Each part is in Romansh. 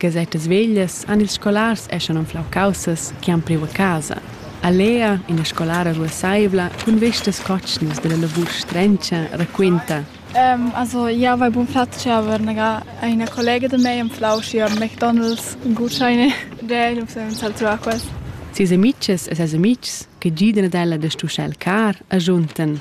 Gasettas veglias han ils scolars eschan anflau caussas che han priu a casa. A Lea, ina scolara ruasseivla cun vestas cotschnas dalla lavur strenscha, raquenta: Also, ich habe einen guten Platz aber eine Kollege de mei empflau hier McDonald's Gutscheine, der muss zahlt zu Aquas. Ses amitgs e ses amitgs che gidan ad ella da stuschar il car, agiuntan: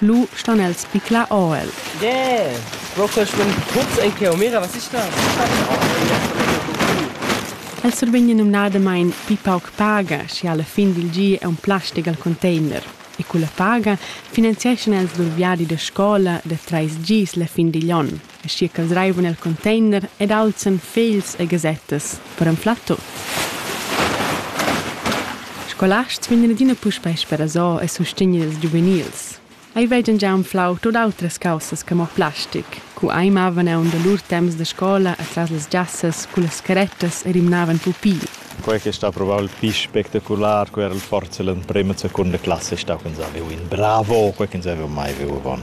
Lu stan els bicla ord. Yeah! Bro, quel schlumm putz ei cheu, mira, was ist da? El survegn numnadamain pli pauc paga, sche a la fin dil gi è un plastic al container, e culla paga finanzieschan els lur viadi da scola da trais gis la fin digl onn. aschia ch'els reivan el contender ed alzan fegls e gasettas per anflar tut. Scolasts vegnan adina puspei sperasò e sustegner ils giuvenils. Ei vegan gia anflau tut autras caussas che mo plastic, cu ei mavan aunc da lur temps da scola atras las giassas cullas carettas e rimnavan pupi. Quei che sta probabel pli spectacular cu era il forza l'emprema e seconda classa ei stau ch'ins ha viu in bravo, quei ch'ins haveva mai viu avon.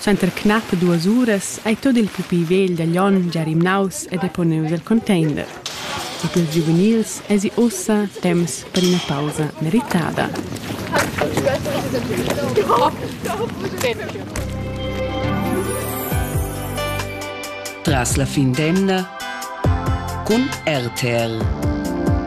Suenter knappe duas uras ei tot il pupi vegl da Glion gia rimnaus e deponius el container. E pils giuvenils eisi ussa temps per ina pausa meritada. Tras la fin d'emna cun RTL.